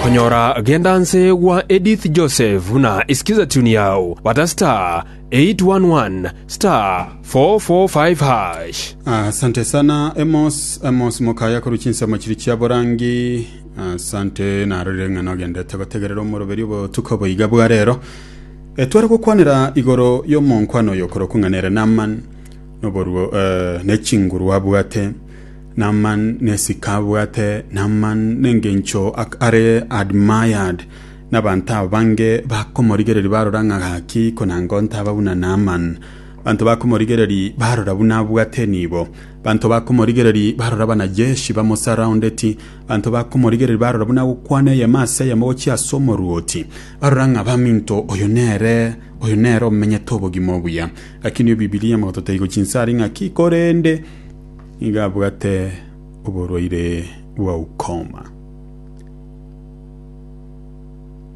Konyora genda nse gwa Edith Joseph buna isikiza tune yao bata star 811 star 445 hash. Asante sana Emos Emos mokaya koru chinsemo chiri chia borangi asante narorire ng'a nogendete gotegerera omoroberi obotuko boiga bwa rero Eh, tware gokwanera igoro y'omonkwana oyo okorokwa ng'a nere Naaman noboruo eh, ne chinguru abwate Naaman nesike abwate Naaman nengencho ak are admired nabanto abange bakomorigereria barora ng'a gaki konanga ontaba buna Naaman. Banto bakomorigereria barora buna abwate enibo. Banto bakomorigereria barora abanajeshi bamosurroundeti. Banto bakomorigereria barora buna agokwana eyemo ase eyemo gochia ase omoruoti. Barora ng'a baminto oyo nere oyo nere omenyete obogima obuya. Gaki nigo Bibilia egototebi gochinsari ng'aki korende nigo abwate oborwaire bwa ukoma.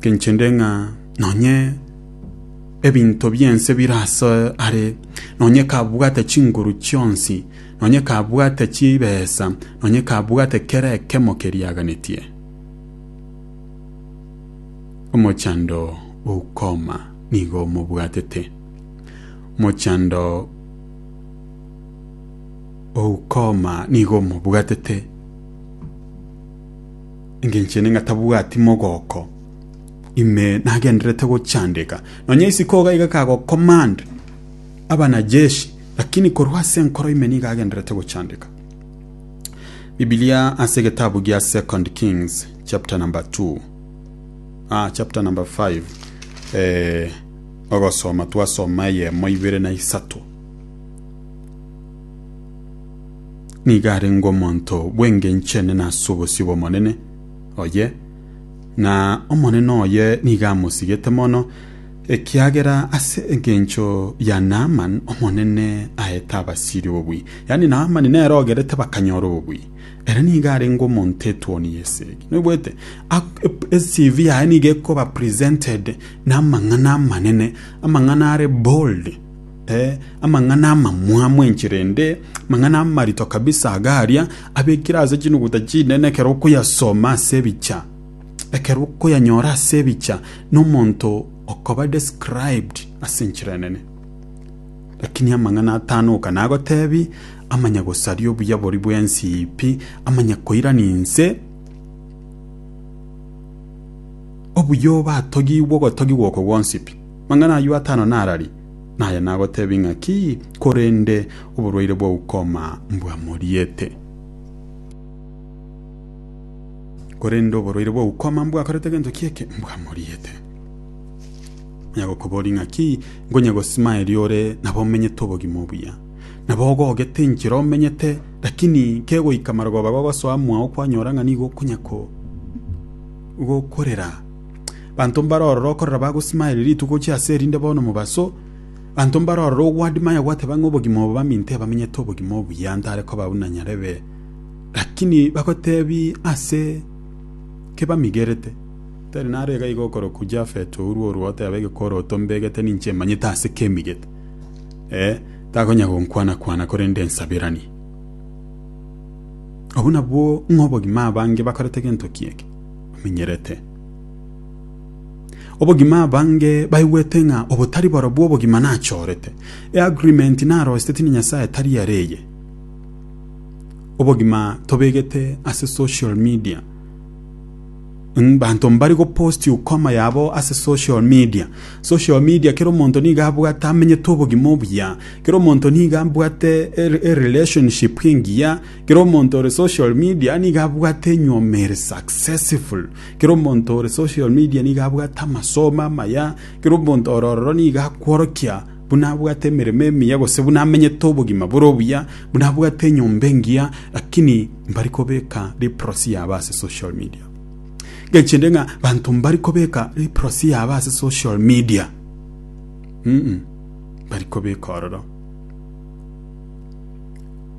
Kenchende ng'a nonye ebinto biense birase are, nonye kabwate chinguru chionsi, nonye kabwate chibesa, nonye kabwate kera ekemo keriaganetie. Omochando o ukoma nigo omobwatete. Mochando Oukoma nigo omobwatete, engencho ene ng'a tabwati mogoko, ime nagendererete gochandeka. Nonya isiko iga iga kagocommand abanajeshi, lakini korwa ase enkoro ime nigo agendererete gochandeka. Bibilia ase egetabu gia Second Kings chapter number two, ah, chapter number five, eh, ogosoma twasoma eyemo, ibere na isato. nigo arenge omonto bw'engencho enene ase obosio bw'Omonene oye, na Omonene oye nigo amosigete mono, ekiagera ase engencho ya Naaman Omonene aete abasiri obobui. Yaani Naaman nere ogerete bakanyora obobui. Ere nigo arenge omonto etuoni y'esegi. Noigwete? Ak- ep- eCV yaye nigo ekoba presented na amang'ana amanene, amang'ana are bold. Ee, amang'ana amamwamu enchera ende, amang'ana amarito kabisa iga aria, abekire ase chinuguta chinene ekero okoyasoma ase ebicha, ekero okoyanyora ase ebicha, na omonto okoba described ase enchera enene. Lakini amang'ana atano oka nagotebi, amanya gosaria obuya boria bw'ensi ii pi, amanya koirania inse, obuya obatogigwe ogotogigwa oko gwonsi pi. Amang'ana ayio atano narari? Naye nagotebia ng'a, Ki, korende oborwaire bwa ukoma mbwamoriete. Korende oborwaire bwa ukoma mbwakorete gento ki'eke, mbwamoriete. Onye agokoboria ng'a, Ki, ngonye gosimaeria ore nabo omenyete obogima obuya, nabo ogogete enchera omenyete, lakini kegoika marogoba gogosoa mwao kwanyora ng'a nigo okonya gokorera, Banto mbare ororo okorera bagosimaeria rituko gochia ase erinde bono mobaso, banto mbare ororo ogwadima aye gwateba ng'a obogima obo baminto ebamenyete obogima obuya ntare koba buna nyarebe, lakini bagotebi ase kebamigerete. Tari naro iga iga okorokwa Jafet ourwe orwa oteba egekoroto mbegete ninche emanyete ase kemigete, ee, takonya gonkwana kwana korende ensaberanie. Obwo nabwo ng'a obogima abange bakorete gento ki'eke bamenyerete. Obogima abange baigwete ng'a obotari borobwo obogima nachorete. E agreement narosete tindi Nyasaye tari are eye. Obogima tobegete ase social media. Banto mbari goposti ukoma yabo ase social media. Social media kera omonto nigo abwate amenyete obogima obuya. Kera omonto nigo abwate erelationship engiya. Kera omonto ore social media nigo abwate enyiomo ere successful. Kera omonto ore social media nigo abwate amasomo amaya. Kera omonto ore ororo nigo akworokia buna abwate emeremo emiya gose buna amenyete obogima bore obuya, buna abwate enyomba engiya, lakini mbari kobeka leprosy yabo ase social media. Ngechi ende ng'a banto mbari kobeka leprosy yabo ase social media, mm mbari kobeka ororo.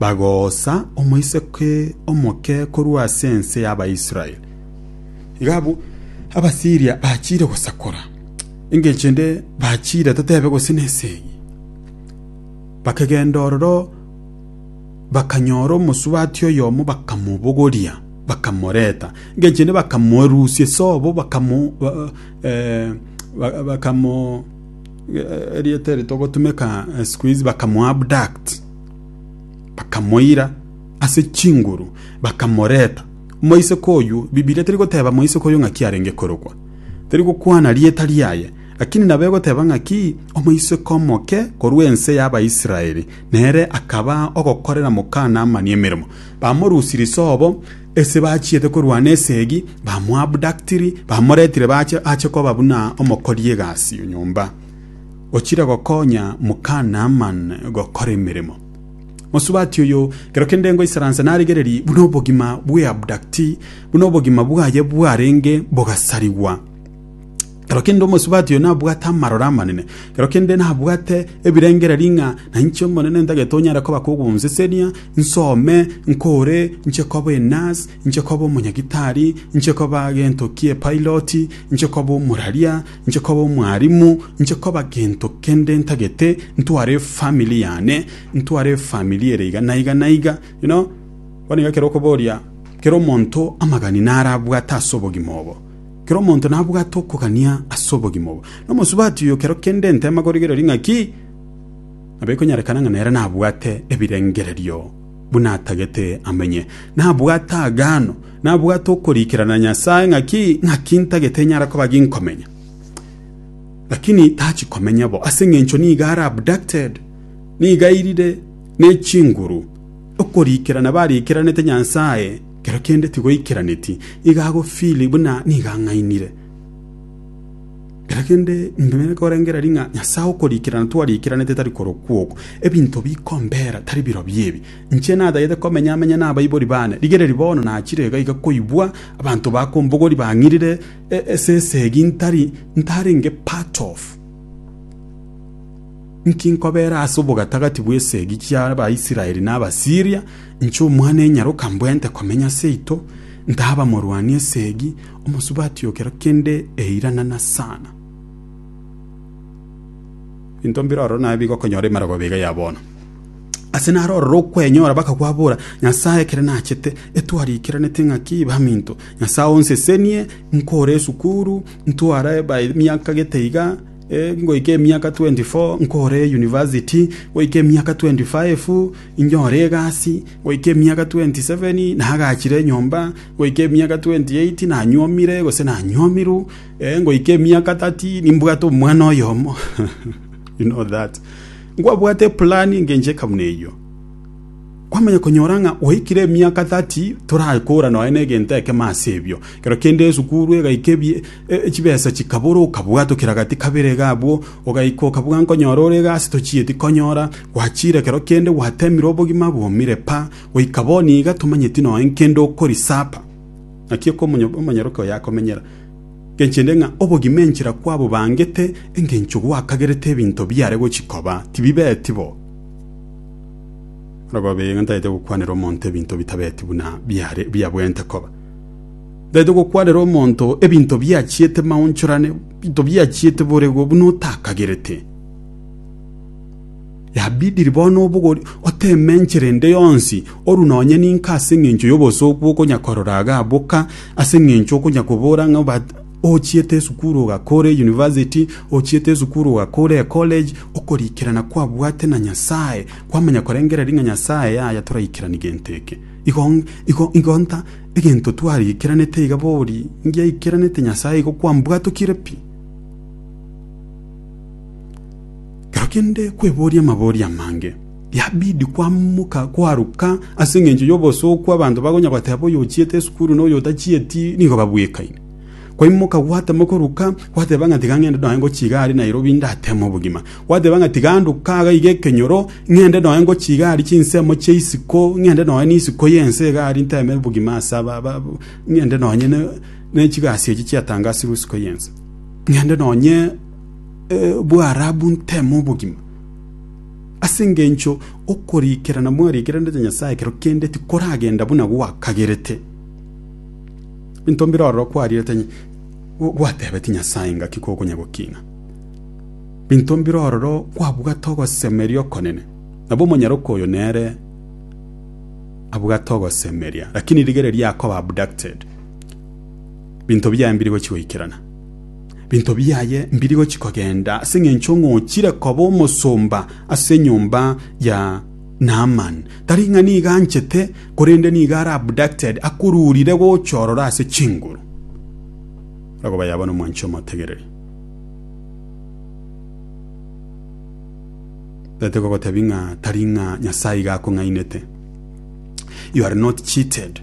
bagoosa omoiseke omoke korwa ase ense y'Abaisraeli. Iga abwo Abasiiria bachiire gosakora, engencho ende bachiire toteebe gose nense eye. Bakegenda ororo bakanyora omosubati oyomo bakamobogoria, bakamoreta. Engencho ende bakamoerusia ase obo bakamo... erieta eri togotumeka eh, siku hizi bakamuabduct bakamoira ase chinguru bakamoreta moiseke oyu bibilia teri goteba moiseke oyo ng'aki arenge korokwa teri gokwana rieta riaye lakini nabo egoteba ng'aki omoiseke omoke korwa ense y'abaisraeli nere akaba ogokorera mokana amani emeremo bamorusi risobo Ase bachiete korwana esegi, bamoabductiri, bamoretire bache ache koba buna omokori egasi o nyomba, ochire gokonya moka Naaman gokora emeremo. Mosubati oyo, ekero kende ngoisaransa narigererie buna obogima bw'eabductee, buna obogima bwaye bwarenge bogasarigwa. Ekero kende omosubati oyo nabwate amarore amanene, ekero kende nabwate ebirengererio ng'a nainche Omonene ntagete onyare koba kogonsesenia, nsome, nkore, inche koba enurse, inche koba omonyagitari, inche koba gento kie piloti, inche koba omoraria, inche koba omwarimu, inche koba gento kende ntagete, ntware efamiri yane, ntware efamiri ere iga na iga na iga, you know. Bono iga ekero okoboria kera omonto amagani naro abwate ase obogima obo. Kera omonto nabwate okogania ase obogima obo, na omosubati oyo kero kende ntema korigereria ng'a ki nabo ekonyarekana ng'a nere nabwate ebirengererio buna atagete amenye. Nabwate aagano, nabwate okoriikerana na Nyasae ng'a ki ng'aki ntagete enyare koba ginkomenya. Lakini tachi komenya bo, ase engencho nigo are abducted, nigo airire ne chinguru. Okoriikerana bariikeranete Nyasae Kero kende tigoikeraneti, iga agofiri buna nigo ang'ainire. Kero kende ninto nigo nkorengeria riria ng'a Nyasae okorikerana twariikeranete tari korokwa oko. Ebinto bikombera tari birobio ebi. Inche natagete komenya amenye nabaibori bane, rigereria bono nachire iga iga koigwa abanto bakombogori bang'irire esese egi ntari ntarenge part of. Inki nkobeera ase obogatagati bw'esegi chi'Abaisraeli na Abasiiria? Inche omwana enyaroka mbwente komenya seito, ntaba morwani esegi, omosubati o kera kende eira na nasana. Binto mbiroro naye bigokonyora emerogo biga ya bono. Ase naro ororo okwenyora bakakwabora, Nyasae ekere nachete, etwarikiranete ng'aki baminto. Nyasae onsesenie, nkore esukuru, ntware emiaka gete iga, Ngoika emiaka tweenti fo nkore yunivasiti, goika emiaka tweenti faefu inyore egasi, goika emiaka tweenti seveni nagachire enyomba, goika emiaka tweenti eiti nanyuomire gose nanyuomiru, ngoika emiaka tati nimbwate omwana oyomo. You know that. Nkwabwate eplan engencho eke buna eyio. Kwamanya konyora ng'a gwaikire emiaka tati torakora nonye na egento ekemo ase ebio. Ekero kende esukuru egaika ebi Chibesa chikabora, okabua tokira gati kabere iga abwo, ogaika okabua nkonyora ore iga ase tochieti konyora, gwachiire ekero kende gwatemirwe obogima bwomire pa, goika bono iga tomanyeti noe nkende okorisapa. Naki oko omonyaroke oye akomenyera, ngenche inde ng'a obogima enchera kwabobangete, engencho gwakagerete ebinto biare gochi koba, tibibeti bo. Orobabe iga ntagete gokwanera omonto ebinto bitabeti buna biare biabwente koba. Tari togokwanera omonto ebinto biachiete maonchorane, ebinto biachiete borego buna otakagerete. Yabidiri bono obogori oteme enchera ende yonsi, oru nonye ninka ase engencho y'obosooku okonya korora iga boka, ase engencho okonya kobora ng'a but ochiete esukuru ogakora eyunivasiti, ochiete esukuru ogakora ecollege, okorikerana kwabwate na Nyasae, kwamanya korengereria ng'a Nyasae yaya toraikerani gento eke. Igo igo igo nta. Egento twariikeranete iga bori ngiaikeranete Nyasae igo kwambwatokire pi. Ekero kende kweboria amabori amange, yabidi kwamoka kwaruka ase engencho y'obosooku abanto bakonya goteba oyochiete esukuru na oyotachieti nigo babwekaine. Kwaimoka gwatema koruka, gwateba ng'a tiga ng'ende noe ngochiga aria Nairobi ndateme obogima. Gwateba ng'a tiga nduke iga iga ekenyoro, ng'ende noe ngochiga aria chinsemo chia isiko, ng'ende noe n'isiko y'ense iga aria nteme obogima ase aba, aba, aba- ng'ende nonye ne, ne chigasi echi chiatangasirwe isiko y'ense. Ng'ende nonye eh, Bwarabu nteme obogima. Ase engencho okorikerana mwariikeranete Nyasae ekero kende tikoragenda buna gwakagerete. Into mbire ororo kwariirete inye, gwateebeti Nyasae ngaki kogonya gokina? Binto mbire ororo kwabugate ogosemeria okonene? Nabo omonyaroke oyo nere abugate ogosemeria, lakini rigereria akoba abducted, binto biaye mbiri gochia goikerana. Binto biaye mbiri gochia kogenda ase engencho ng'a ochire koba omosomba ase enyomba ya Naaman. Tari ng'a nigo anchete korende nigo are abducted akururire gocha ororo ase chinguru akoba yaba nomwanchi omotegereri tete kogotebi ng'a tari ng'a nyasaye iga akong'ainete you are not cheated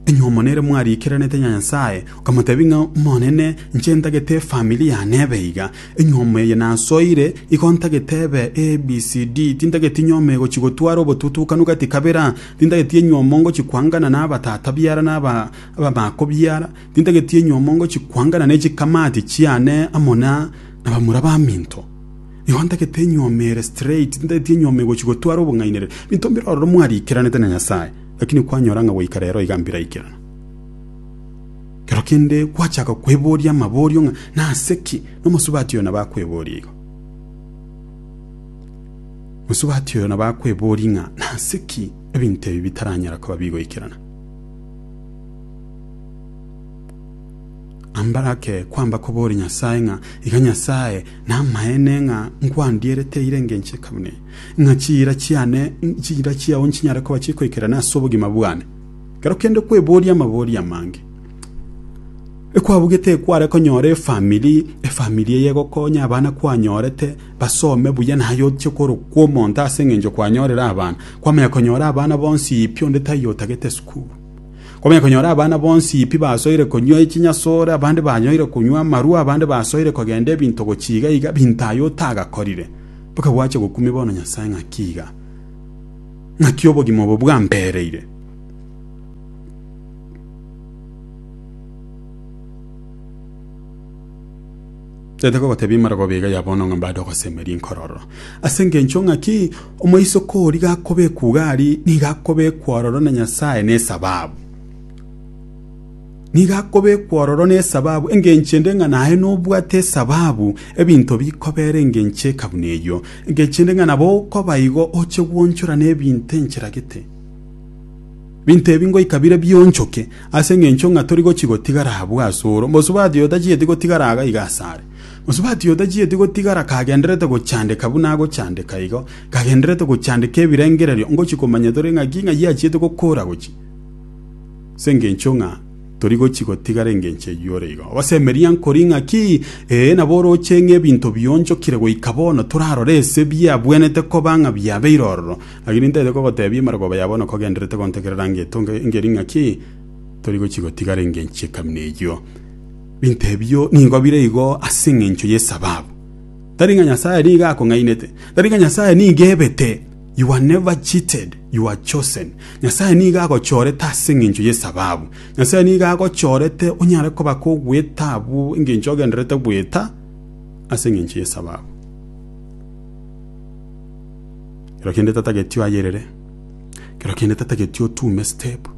enye omonere mwariikeranete nyasaye okamotebi ng'a monene nche ntagete efamili yane ebe iga Enyiomo eye nasoire, igo ntagete ebe ABCD, tintageti nyiomo egochi gotwara obotutukanu gati kabera, tintageti enyiomo ngochi kwangana nabatata biara na abamako biara, tintageti enyiomo ngochi kwangana ne chikamati chiane amo na bamura baminto. Igo ntagete enyiomo ere straight, tintageti enyiomo egochi gotwara obong'ainereria. Binto mbire ororo mwariikeranete na Nyasae, lakini kwanyora ng'a goika rero iga mbiraikerana. Ekero kende gwachaka kweboria amaborio ng'a nase ki nomosubati oyo nabo akweboria igo. Mosubati oyo nabo akweboria ng'a nase ki ebinto ebi bitaranyara koba bigoikerana. Ambarake kwamba koboria Nyasae ng'a iga Nyasae namaene ng'a nkwandierete eira engencho eka buna eye, ng'a chiira chiane chiira chiao nchinyare koba chikoikerana ase obogima bwane. Ekero kende kweboria amabori amange, ekwabugete ekware konyora efamiri, efamiri eye egokonya, abana kwanyorete basome buya, naye ochie korokwa omonto ase engencho kwanyorire abana. Kwamanya konyora abana bonsi ii pi onde taiyo otagete esukuru. Kwamanya konyora abana bonsi ii pi basoire konywa echinyasore, abande banyoire konywa amarwa, abande basoire kogenda ebinto gochia iga iga, binto aye otagakorire. Mpaka gwache gokumia bono Nyasae ng'aki iga. Naki obogima obo bwampereire. Tete kogotebia imarogoba iga ya bono ng'a mbade ogosemeria inkororo. Ase engencho ng'aki omoiseke oria gakobekwa iga ari, nigo akobekwa ororo na Nyasae nesababu. Nigo akobekwa ororo nesababu, engencho ende ng'a naye nobwate esababu ebinto bikobera engencho eka buna eyio. Engencho ende ng'a nabo okoba igo oche gwonchora nebinto enchera gete. Ebinto ebi ngoika bire bionchoke, ase engencho ng'a tori gochi gotigara abwo asoro. Mosubati oyo tachieti gotigara aga iga asare. Mosubati oyo tachieti gotigara kagendererete gochandeka buna agochandeka igo, kagendererete gochandeka ebirengererio, ngochi komanya tore ng'aki ng'ayio achiete gokora gochi. ase engencho ng'a tori gochia gotigara engencho eyio ore igo. Gose emeria nkori ng'aki? Ee, nabo oroche ng'a ebinto bionchokire goika bono, torarore ase biabwenete koba ng'a biabeire ororo. Naki nintaete kogotebia emarogooba ya bono kogendererete gontegerera ngetonga engeri ng'aki tori gochia gotigara engencho ekamina eyio. Binto ebio nigo bire igo ase engencho y'esababu. Tari ng'a Nyasae nigo akong'ainete, tari ng'a Nyasae nigo ebete. You are never cheated, you are chosen. Nyasae nigo agochorete ase engencho y'esababu. Nyasae nigo agochorete onyare koba kogweta abwo engencho ogenderete gweta ase engencho y'esababu. Kero kende tatageti oyerere. Kero kende tatageti otume step.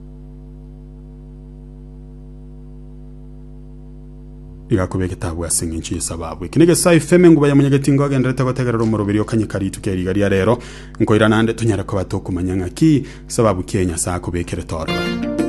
Igakoba egetabu ase engencho y'esababu. Eki negesae efeme nguba ya monyageti ngo agenderete gotegerera omoroberi okanyeka rituko ya riga ria rero. Nkoira naende tonyare koba tokomanya ng'aki esababu ki eye Nyasae akobekire torora.